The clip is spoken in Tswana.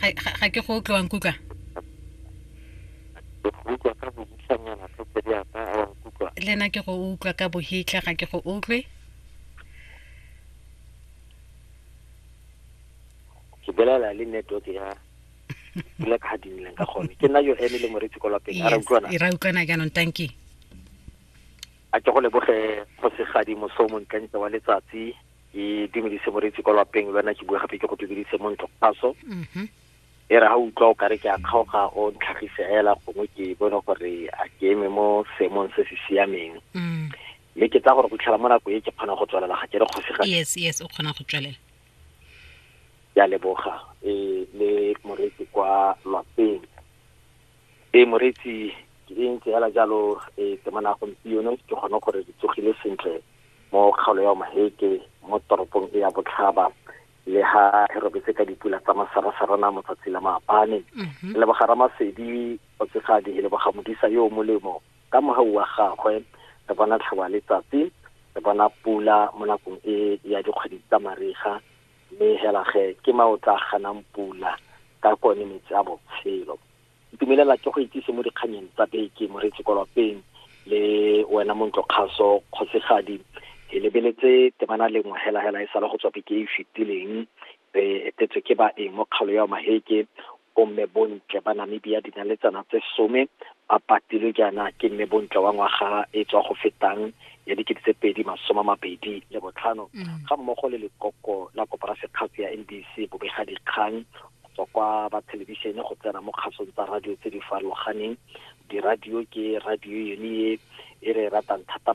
ga ga- ga ke go utlwa nkutlwa le nna ke go utlwa ka bohitlha ga ke go utlwe ke bolela le network ya dula ka ga dinileng ka gone ke nna yo ene le moretsi ko lapeng a ra utlwana e ra utlwana jaanong tanki a ke go leboge kgosigadi moso o montlentle wa letsatsi itumedise moreetsi kwa lapeng lwana ke bua gape ke go tumedise mo ntlo kgaso mm-hmm. e re ga utlwa o kare ke a kgaoga o ntlhagise fela gongwe ke bone gore a ke eme mo seemong se se siameng mm. mme ke tsa gore go tlhela mo nako e ke kgona go tswelela ga ke re kgosega yes yes o kgona go tswelela ya leboga e le moreetsi kwa lapeng Ee, moreetsi ke e ntse hela jalo e temana gompieno ke kgone gore re tsogile sentle mo kgaolo ya maheke mo toropong e ya botlhaba le ha re robetse ka dipula tsa masarasarana motsatsi la maabane mhm. le bogara masedi o tsefadi le boga modisa yo o molemo ka mogau wa gagwe re bona tlhaba letsatsi re bona pula mo nakong e ya dikgwedi tsa mariga Mme hela ge ke ma o tla ganang pula ka kone metsi a botshelo. Ntumelela ke go itsise mo dikganyeng tsa beke moretsi kolopeng le wena montlo kgaso kgosigadi ke lebeletse temana lengwe hela hela e sale go tswa beke e e fetileng re etetswe ke baeng mo kgalo ya maheke Bomme bontle ba Namibia dinaletsana tse some ba patilwe jaana ke mme bontle wa ngwaga e tswa go fetang ya dikete tse pedi masoma mabedi le botlhano mm. ga mmogo le lekoko la koporasekgatsi ya NBC bobega dikgang go tswa kwa ba thelebišene go tsena mo kgasong tsa radio tse di farologaneng diradio ke radio yone e e re e ratang thata